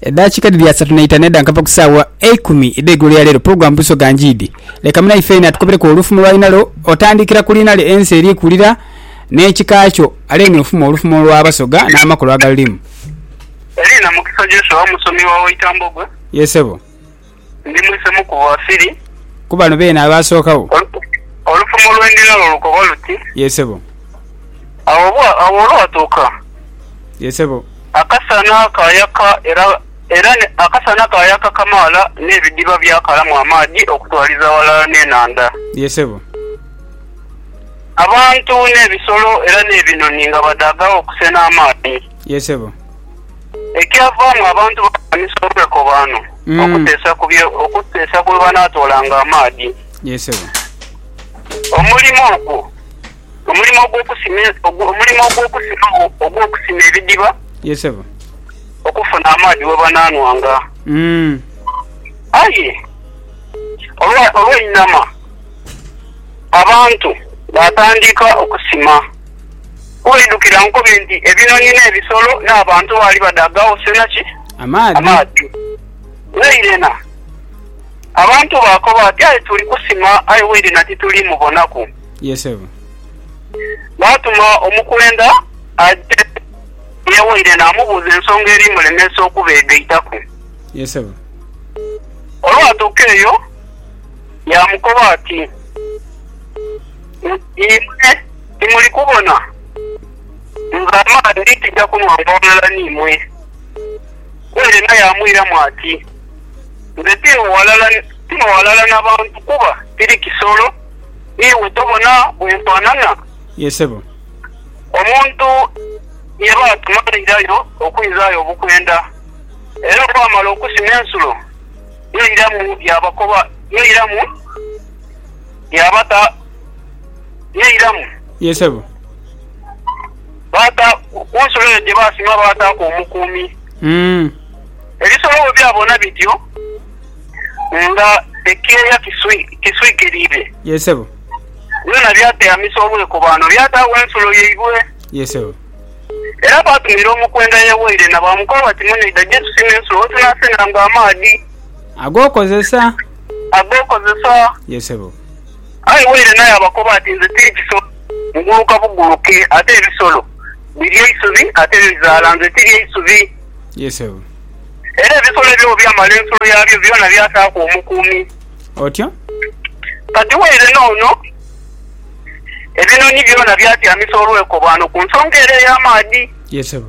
Edhakiika dhiri asatu na itanu edha nkava ku saawa eikumi edh'eigulo ya leero. Pulogulaamu Busoga Njiidi. Leka mwine Ifeena atukobereku olufumo lw'alina lwo otandikira ku liina lye ensi eri kulira n'ekika kyo ale n'ofumo olufumo lw'Abasoga n'amakulu agalulimu. Eliina Mukisa Joshua, Musomi wa Waitambogwe. Ye Ssebo. Ndi mwisemu ku Bafiri. Ku bano beene abaasookagho. Olufumo lwe ndi nalwo lukoba luti. Yee sebo. Agho olwatuuka. Yee sebo. Akasana kaayaka era, era akasana kaayaka kamaala n'ebidiba byakalamu amaadhi okutwaliza ghalala n'enhandha. Yee sebo. Abantu n'ebisolo era n'ebinhonhi nga badaagagho okusenha amaadhi. Yee sebo. Ekyavaamu, abantu baalwanisa olwekobaano okuteesa ku bye okuteesa ku we banaatoolanga amaadhi. Yee sebo. Omulimo ogwo, omulimo ogw'okusima e, ogwo- omulimo ogw'okusima ogw'okusima ebidiba Yee sebo. okufuna amaadhi we banaanwanga. Mm. Aye olwa- olw'einama abantu baatandika okusima. Olw'eidhukira nkobe nti ebinhonhi n'ebisolo n'abantu baali badhaagagho sena ki? Amaadhi. Wairena abantu baakoba bati, Aye tuli kusima, aye wairena tituli mubonaku. Ye sebo. Baatuma omukwenda aje ye wairena amubuuze ensonga eri mulemesa okubeegaitaku. Ye sebo. Olwatuuka eyo yaamukoba ati. Imwe timuli kubona? Nze amaadhi ndi tija kunwanga ghalala n'imwe. Ku ere naye amwiramu ati, Nze tino ghalala, tino ghalala na bantu, kuba tiri kisolo. Iwe tobona bwe nfanana? Ye sebo. Omuntu ye baatuma airayo okwizaayo obukwenda, era olwamala okusima ensulo, yairamu yaabakoba, yairamu. yaabata n'eiramu. Ye sebo. Baata, ku nsulo eyo gye baasima baataaku omukuumi. Ebisolo bwe byabona bityo nga ekyeya kiswikiriire. Ye sebo. Byona byateamisa obwekobaano, byataagho ensulo yaibwe. Ye sebo. Era baatumira omukwenda ye waire na baamukoba bati, Munaidha gye tusime ensulo we tunaasenanga amaadhi. Ag'okozesa. ag'okozesa. Ye sebo. Aye waire naye abakoba ati, Nze tiri kisolo, nguluka buguluke, ate ebisolo birya eisubi ate bizaala, nze tirya isubi. Ye sebo. Era ebisolo ebyo bwe byamala ensulo yabyo, byona byataaku omukuumi. Otyo. Kati waire n'ono, ebinhonhi byona byatyamisa olwekobaano ku nsonga ere ey'amaadhi. Ye sebo.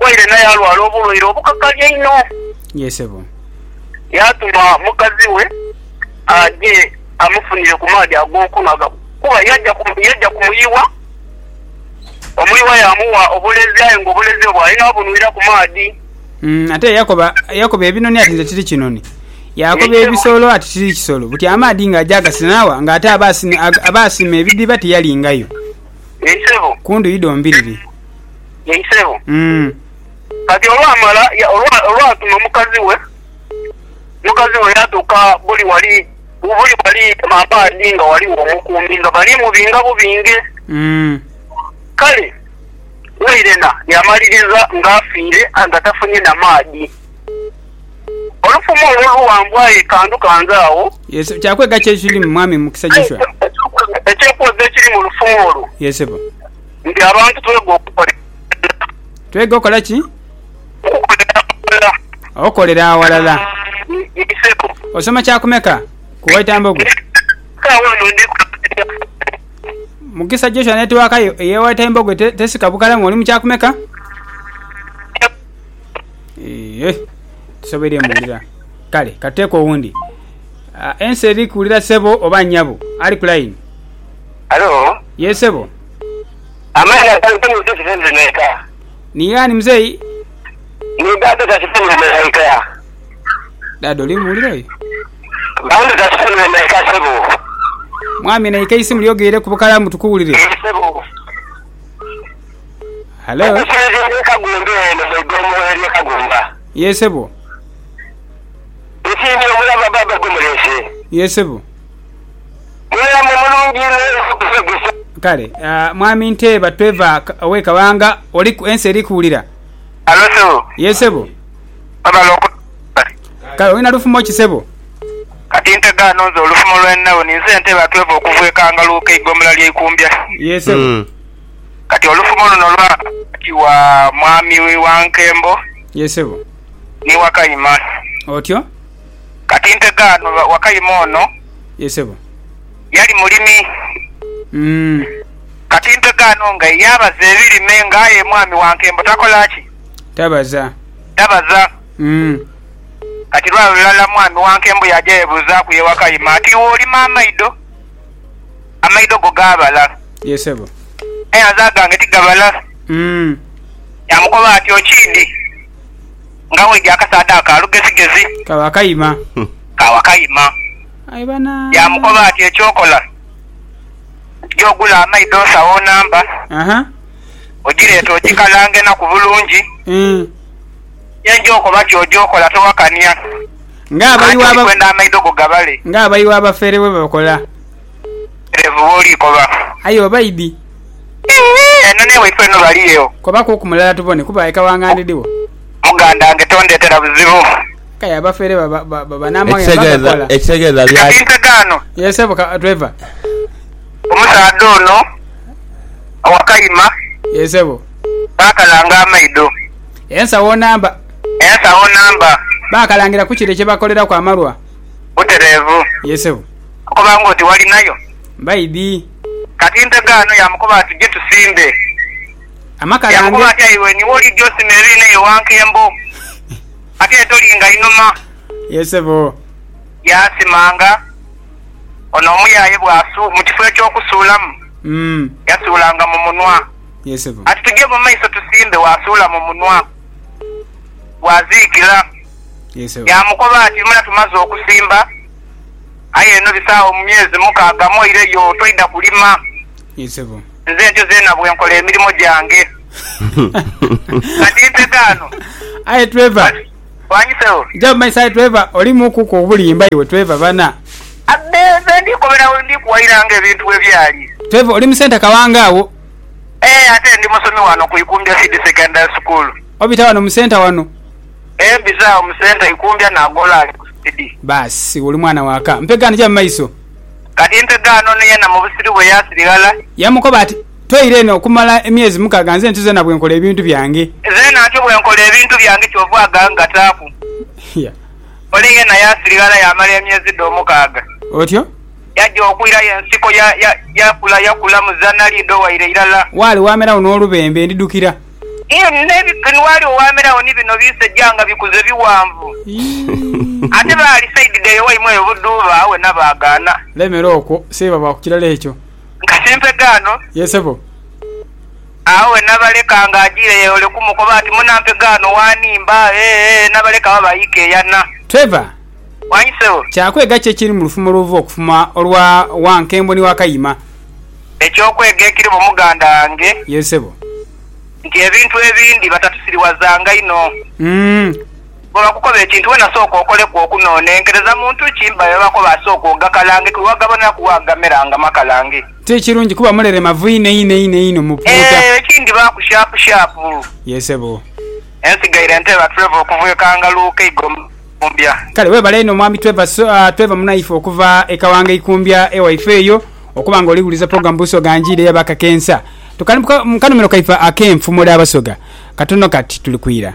Waire naye alwala obulwaire obukakali einho. Ye sebo. Yaatuma mukazi we aje amufunire ku maadhi ag'okunhwa kuba yaja yaja ku muyiwa. Omuyiwa yaamugha obulezi aye ng'obulezi obwo ali naabunhwira ku maadhi. Mm, ate yakoba yakoba ebinoni ati nze tiri kinoni. Yakoba ebisolo ati tiri kisolo. Buti amaadhi ng'aja agasinaawa ng'ate aba asina ag- aba asima ebidhiba tiyalingayo Ye sebo. ku ndhuyi dhombiriri. Ye isebo. Umm. Kati olwamala ya, olwa, olwatuma mukazi we, mukazi we yatuka buli wali, buli wali mabaadi nga waligho omukuumi nga bali mubinga bubinge. Umm. Kale wairena yamaliriza nga afiire nga tafunye na maadi. Olufuma olwo oluwanvu aye kantu kanze agho. Ye sebo. Kya kwega ki ekirimu, Mwami Mukisa Joshua? Ekyokwega ekiri mu lufuma olwo. Ye sebo. Nga abantu twega okukolera aghalala. Twega okola ki? Okukolera aghalala. Okolera aghalala. Nkiseeko. Osoma kya kumeka ku Waitambogo? Saagho eno ndi ku lugudho lwa Kampala. Mukisa Joshua netiwaaka yo ey'e Waitambogo tesika bukalamu oli mu kya kumeka? Eeh, tisoboire muwulira. Kale ka tuteeko owundi. Ensi eri kuwulira sebo oba nyabo? Ali ku layini. Halo. Yee sebo. Amaani agantu ni mpisi ze ndheneeka. Ni yaani mzei? Ni dada Tasifuni Wemereika. Dada oli muwulira oyo? Bambi Tasifuni Wemereika sebo. Mwami naika eisimu lyo gheire ku bukalamu tukuwulire. Ee sebo. Hello? Omusuubuzi eri Kagumbe eno mu igomo erye Kagumba. Ye sebo. Nsiimye omulava baba gwe muleese. Ye sebo. Mulamu mulungi inho era atutegese. Kale ah, mwami Nteeba tweva ka- owe Kabanga oli ku- ensi eri kuwulira. Halo sebo. Ye sebo. Webale oku Kale olina lufumo ki sebo? Kati ntega ano nze olufumo lweninawo ninze Nteeba tweva okuva e Kangaluuka eigombolola lye Ikumbya. Ye sebo. Mm. Kati olufumo luno lwa wakati wa mwami wa Nkembo Ye sebo. ni Wakayima. Otyo. Kati nte dhaanu Wakayima ono. Ye sebo. Yali mulimi. Umm. Kati nte dhaanu nga ye yabaza ebirime nga aye mwami wa nkembo takola ki? Tabaza. Tabaza. Umm. Kati lwa lulala mwami wa nkembo yaja yebuzaaku ye Wakayima ati iwe olima amaido? Amaido go gaabala. Ye sebo. Aye nze agange tigabala. Umm. Yamukoba ati okindi. Nga weja akasaadha aka lugezigezi. Ka Wakayima. Ka Wakayima. Aye bana. Yaamukoba ati, Eky'okola, ja ogule amaidho nsawo namba. Aha. Ogireete ogikalange enaku bulungi. Eeh. Ye nja okoba ky'oja okola, towakania. Nga abayi w'aba. Anti ndikwenda amaidho go gabale. Nga abayi w'abafeere bwe bakola. Erevu bwoli koba. Aye oba idi. Eeh eno newaifo eno baliyo. Koba kuku mulala tubone kuba eka wange andidhiwo. Mugandange tondetera buzibu. Aye abafere baba namaghe nga bagakola. Ekitegeeza byaki? Kati nte gaano. Yee sebo ka driver. Omusaadha ono owakayima. Yee sebo. Baakalanga amaido. Ensawo namba. Ensawo namba. Baakalangiraku kire kyebakoleraku amalwa. Butereevu. Yee sebo. Okoba ng'oti walinayo. Baidhi. Kati nte ghano yaamukoba ati, Je tusimbe. Amaka ghange. Yaamukoba ati, Aye iwe niwo olidha osime ere n'eyo wankembo. Kati aye tolinga inhuma. Ye sebo. Yaasimanga ono omuyaye bw'asu, mu kifo eky'okusuulamu, yasuulanga mu munwa. Ye sebo. Ati, Tuje mu maiso tusimbe, waasuula mu munwa. Bw'aziikira. Ye sebo. Yaamukoba ati, Mula tumaze okusimba. Aye eno bisaagho mu myezi mukaaga moire yo toidha kulima. Ye sebo. Nze ntyo zeena bwe nkola emirimo gyange. Kati nte gaano. Aye Trevor. Wangi sebo. Gya mu maiso aye Trevor olimu ku ku obulimba iwe Trevor bana. Abbe nze ndi kobera we ndi kuwaira nga ebintu bwe byali. Trevor oli mu centre kawanga agho. Eeh ate ndi musomi wano ku Ikumbya Seed Secondary School. Obita wano mu centre wano. Eeh bizaawo musenta ikumbya nagoola ali ku sipidi. Baasi oli mwana wa ka. Mpegaano ja mu maiso. Kati Mpegaano ni yena mu busiru bwe yaasiri ghala. Yamukoba ati, Toira eno okumala emyezi mukaaga nze ntuze na bwe nkola ebintu byange. Nze nantyo bwe nkola ebintu byange kyova aga ngataaku. Yeah. Ole yena yaasiri ghala yaamala emyezi dhe omukaaga. Otyo. Yaja okwira aye ensiko ya, ya, yakula, yakula mu zanali idho waire irala. Waali waameragho n'olubembe, ndidhukira. Ni waali owaamerawo ni bino biseja nga bikuze bighanvu. Ate baali saidi dhaire waimwe eyo budhuuba, awe na baagaana. Lemera okwo, Seeba va ku kirala ekyo. Nkasi mpega ano. Ye sebo. Awe na baleka nga ajiire yeeyoleku mukoba ati, Muna mpega ano waanimba? Ee, ee, na baleka baba aika eyana. Trevor, Mwangi sebo. Kya kwega ki ekiri mu lufumo lw'obuva okufuma olwa Wankembo ni Wakayima? Eky'okwega ekiri mu muganda wange. Yes sebo. Nti ebintu ebindi batatusiriwazanga inho. Bwebakukoba ekintu wena sooka okoleku okunonenkereza muntu ki mba byebakoba sooka ogakalange ku wagaboneraku wagamera nga makalange. Ti kirungi kuba muleremavu inho einho einho einho mu puuta. Eeh ekindi baaku shapu shapu. Yes sebo. Ensigaire nteeba Trevor okuva e Kangalu, Keigo. Ikumbya. Kale webale inho mwami Trevor Trevor Munaife okuva e Kawanga Ikumbya ewaife eyo okuba nga oli wuliza program Busoga Njiire ya Bakakensa. Tukali mu kanhumiro kaife ak'enfumo dha Basoga. Katono kati tuli kwira.